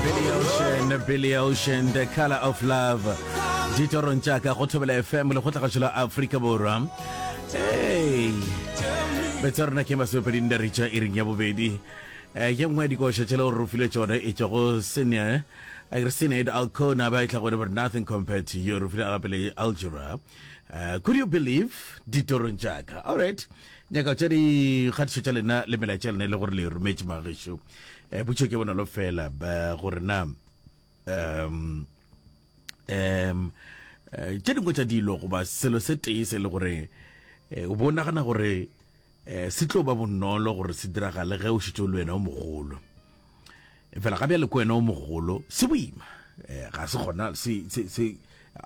Billy Ocean, Billy Ocean, The Color of Love. Ditorong tša ka go thobela FM le go tlagatšo la Afrika Borwa. Hey. Betsa rona ke masopeding da ritša e reng ya bobedi. Eh, ye nngwe ya dikoša tše le gore o file tšona e tšwa go senior a re senate alcona ba e tla gore but nothing compared to you re file gape le algebra uh, could you believe ditorong tša ka all right nyaka tša dikgatišo tša lena le melaetša lena e le gore le rometše magešo eh, butšho ke bonolo fela gore na um um eh, tše dingwe tša dilo goba selo se tee se le gore eh, o bo nagana gore um se tlo ba bonolo gore se diragale ge o šitse le wena o mogolo fela ga bjale ko wena o mogolo se boima um ga se gona se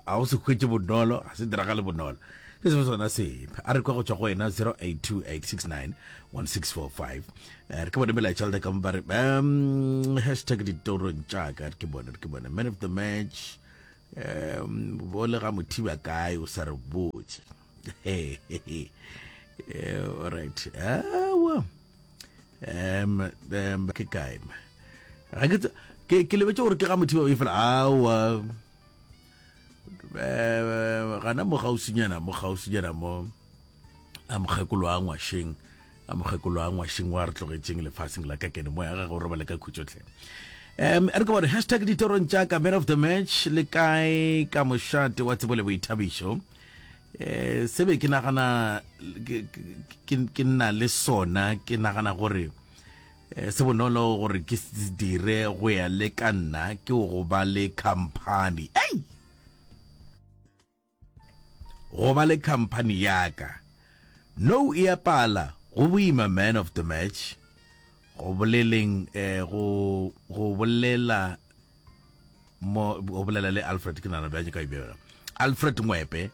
ga o se hwetše bonolo ga se diragale bonolo ke sebe sona sepe a re kwa go tšwa go wena 0828691645 eh, re ke bone melaetša le ka ba re um hashtag ditorong tšaka re ke bone re ke bone man of the match um bo le ga mothiba kae o sa re botse eh, alright awa um ke kae ke lebetse gore ke ga mothiba o e fela awa eh, gana mo gausinyana mo gausinyana mo a mokgekolo a ngwasheng a mokgekolo a ngwasheng wa re tlogetšeng lefaseng la ka kene moya gage o robale ka khutsotlhe um re ke bone hashtag ditorong tša ka man of the match le kae ka mošate wa tsebo le boithabišo um eh, se be ke nagana ke nna le sona ke nagana gore Eh, se bonolo gore ke se dire go ya le ka nna ke go ba le company ei go ba le company yaka no e a pala go boima man of the match go boleleng eh, go go bolela mo o bolela le alfred ke nana bjanye ka ibjela alfred ngwepe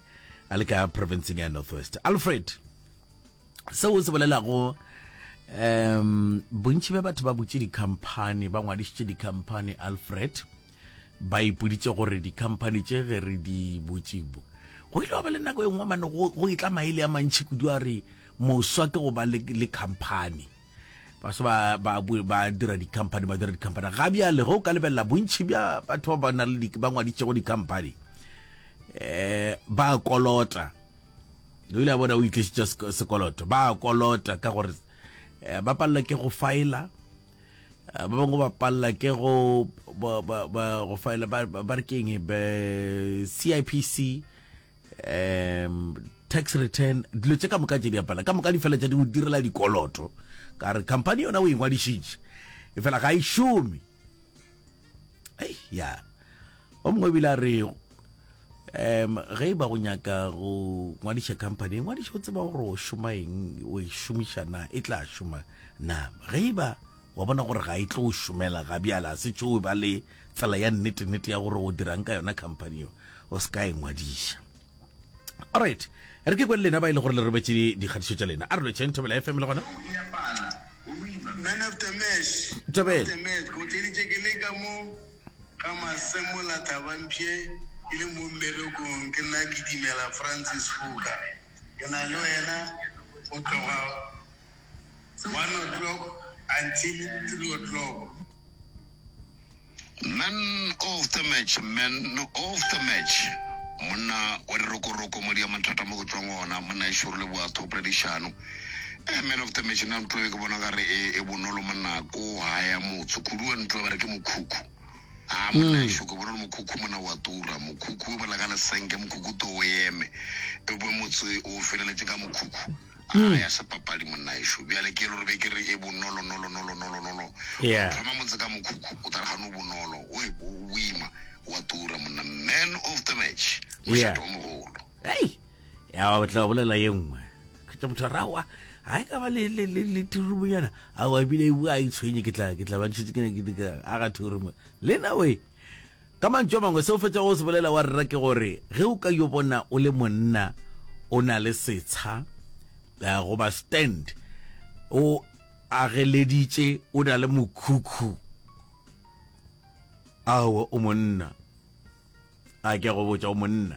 a le ka provinceng ya northwest alfred seo o se bolelago um bontši bja batho ba butše dikhamphani ba ngwadišitše dikhamphani alfred ba ipoditše gore dikhamphani tše ge re di butšibo go ile wa ba le nako e nngwe mane go itla maele a mantšhi kudu a re moswa ke go ba le khamphani baso ba ba ba dira di-company ba dira di-company ga bjale go ka lebelela bontšhi bja batho ba ba na le ba ngwaditšego di-company eh ba kolota o ile a bona o itlisitše sekoloto ba kolota ka gore eh, ba palela ke go faela eh, ba bangwe ba palela ke go go faela ba re keng be CIPC um tax return dilo tse ka moka tse di apala ka moka di fela tsa di go direla dikoloto ka re company yona o ingwadišitše e fela ga e šome ei ya o mongwe ebile a re um ge e ba go nyaka go ngwadiša company ngwadiša o tseba gore o šoma eng o e šomiša na e tla šoma na ge e ba Wa bona gore ga e tlo o šomela ga bjale, a se tšo o ba le tsela ya nnete-nnete ya gore o dirang ka yona company yo, o se ka e ngwadiša. Alright, re ke kwe le lena ba e le gore le robetše dikgatišo tša lena. A re lwetšeng Thobela FM le gona. Man of the match, man of the match, ke go tleditše ke le ka mo ga Masemola Thabampshe ke le mo mmerekong, ke nna Kitimela Francis Khuka, ke na le wena go tloga. One o'clock until three o'clock. Man of the match Man of the match Monna wa dirokoroko madi a mathata mo go tswang ona monna e šoro le boatho poledišano eh, Man of the match nna ntlo e ke bona gare e, e bonolo monna ko haya motse kudu wa ntlo ba re ke mokhukhu a ah, monna e mm. šoko bonolo mokhukhu monna wa tura mokhukhu o bala ka lesenke mokhukhu to o eme e bo motse o feleletse ka mokhukhu A ga ya sepapadi monnaešo. Bjale ke lo re be ke re e bonolo nolo nolo nolo nolo. Yeah. Go thoma motse ka mokhukhu o tla re gane o bonolo. O e bo o boima. O a tura monna. Man of the match. Mošate o mogolo. Hei! Ya ba tla bolela ye nngwe. Kgetha motho a rawa. Ha e ka ba le le le le tirumonyana. A wa bile e bua a itshwenye ke tla ke tla ba ntshitse ke ne ke ka aga thoro mo. Lena we. Ka mantšu a mangwe, se o fetšago go se bolela, wa rera, ke gore ge o ka yo bona o le monna o na le setsha goba stand, o ageleditše, o na le mokhukhu, aowa, o monna. A ke a go botša, o monna.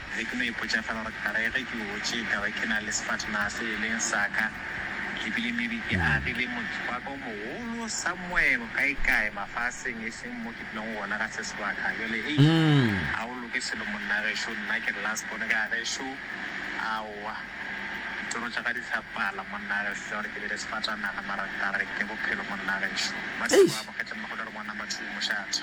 Be ke no ipotša fela gore ka re ge ke gotše ka be ke na le sefatanaga se e leng sa ka e bile maybe ke agile motse wa ka o mogolo somewhere kaekae mafaseng e seng mo ke dulago gona ga se sebaka. Bjale hei, ga o loke selo monna gešo, nna ke re last born ka gešo, aowa, ditoro tša ka di sa pala monna gešo tša gore ke be le sefatanaga mara ka re ke bophelo monna gešo. Ba se ba amogetse mma go tla re bona mathuhu mošate.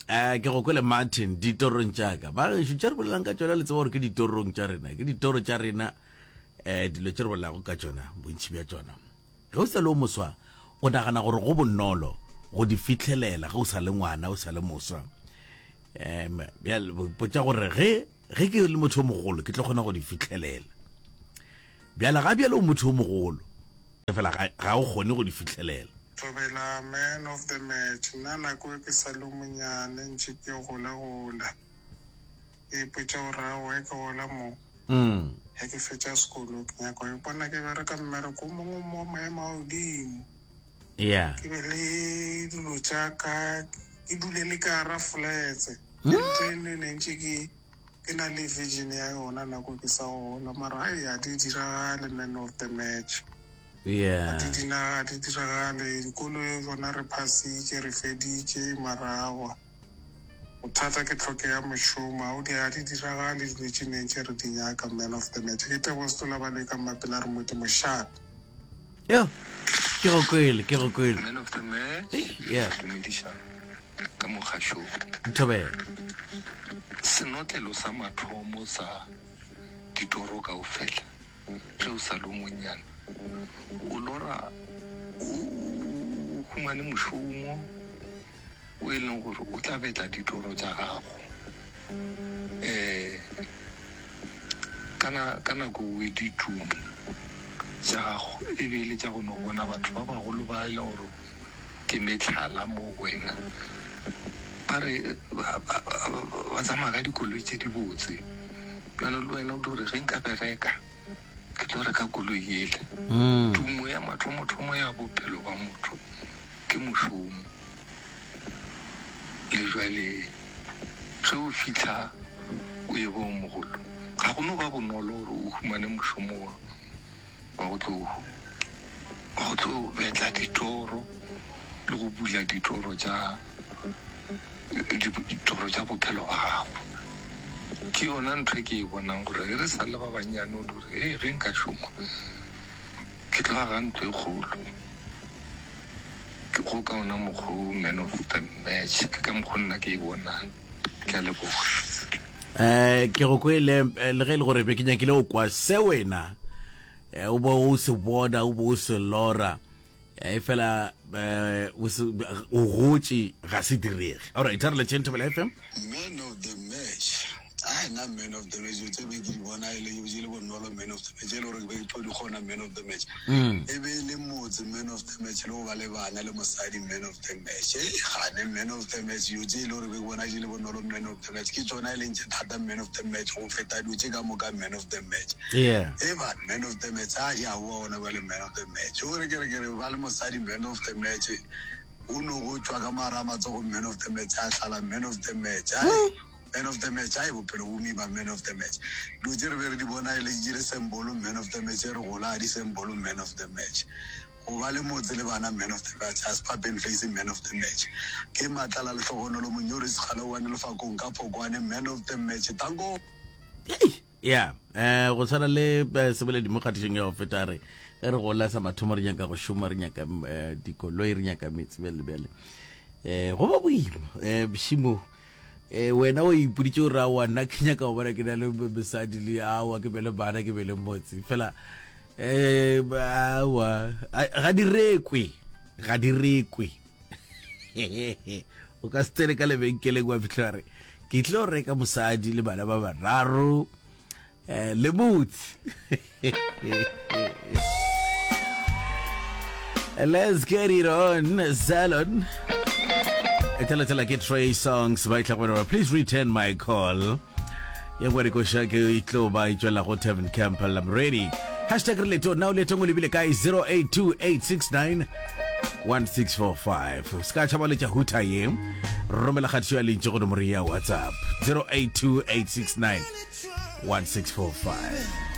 Eh, ke go kwele Martin ditorong tša ka ba gešo tša re bolelang ka tšona le tseba gore ke ditorong tša rena ke ditoro tša rena um dilo tše re bolelago ka tšona bontšhi bja tšona ge o sa le o moswa o nagana gore go bonolo go di fitlhelela ge o sa le ngwana o sa le moswa um potsa gore ge ge ke le motho o mogolo ke tlo kgona go di fitlhelela Bjale, ga bjale o motho yo mogolo, efela ga, ga o kgone go di fihlelela. Thobela, man of the match. Nna nako e ke sa le yo monyane, ntše ke gola-gola. Ke ipotša gore aowa ge ke gola mo, ge ke fetša sekolo, ke nyaka go ipona ke bereka mmereko o mongwe mo maemo a godimo, ke be le dilo tša ka, ke dule le ka gara flats. Ke ntho e nngwe e ne ntše ke. Ke na le vision ya yona nako ke sa gola mara e a di diragale man of the match. Yeah. Di dina ga di diragale dikolo e bona re phasitše re feditše mara awa. Bothata ke tlhoke ya mošomo ga o di ga di diragale dilo tše neng tše re di nyaka man of the match. Ke tebogo setola ba le ka mmapela re modimo shap. Yo. Ke go kwele ke go kwele. Man of the match. Yeah. Dumediša. ka mogašong. Nthobela. Senotlelo sa mathomo sa ditoro kaufela ge o sa le o monnyane, o lora o humane mošomo o e leng gore o tla betla ditoro tša gago. Kana ka nako o ditšong tša gago e be e le tša go no bona batho ba bagolo ba e leng gore ke mehlala mo go wena. Ba re ba, ba, ba, ba tsamaya ka dikoloi tse dibotse. Bjalo le wena o tlo re ge nka bereka ke tlo reka koloi ele. Mm. Tumo ya mathomothomo ya bophelo ba motho ke mošomo. Le jwale ge o fitlha o e bong mogolo, ga go no ba bonolo gore o humane mošomo wa Ba go tlo, ba go tlo betla ditoro le go bula ditoro tša, ditoro tša bophelo ba gago. Ke yona ntho e ke e bonang gore ge re sa le ba bannyane o dire, hei ge nka šoma ke tlo aga ntlo e kgolo. Ke go ka ona mokgwa o man of the match, ke ka mokgwa nna ke e bonang. Ke a leboga. Eh, ke go kwele eh, le ge e le gore be ke nyakile go kwa se wena eh, o bo o se bona o bo o se lora eh, e fela eh, o se- o gotše ga se direge alright a re letšeng thobela fm man of the match a na man of the match tse be ke di bona e le e le bonolo man of the match e le gore be ke tlo di kgona man of the match e be e le motse man of the match le go ba le bana le mosadi man of the match e gane man of the match yo tse e le gore be ke bona di le bonolo man of the match ke tsona e leng tse thata man of the match go feta dilo tse ka moka man of the match e ba man of the match a ya wa ona ba le man of the match o re ke re ke re ba le mosadi man of the match o no go tswa ka mara matsogo man of the match a tlala man of the match Man of the match, hai bophelo bo mima Man of the match, dilo tše re be re di bona e le tše re seng bolo Man of the match, re gola ga di seng bolo Man of the match, go ba le motse le bana Man of the match, a Spar Ben Fassie Man of the match, ke Matlala Lehlogonolo Monyori Sekgala One Lefakong ka Phokwane Man of the match, Tanko! Hei! ya um go tshwana le eh, seboledi mo kgatišong ya go feta re ge re gola sa mathomo re nyaka go šoma re nyaka eh, dikoloi re nyaka metsi bjale bjale um go ba boima um bošimo eh wena o ipoditse o ra wa nna ke nyaka go bona ke na le mosadi le awa ke bele bana ke bele motse fela um awa ga di rekwe ga di rekwe o ka se tsene ka lebenkeleng wa fitlhela re ke tle go reka mosadi le bana ba bararo um le motse let's get it on salon e thalathala ke tray songs ba itlha gore please return my call ye gore ko sha ke e tlo ba e tšwela go Tavern Camp la Mredi hashtag re leto now leto go lebile kae 082869 1645 ska tšhaba le tša huta ye romela kgatišo ya lentše go nomoro ya whatsapp 082869 1645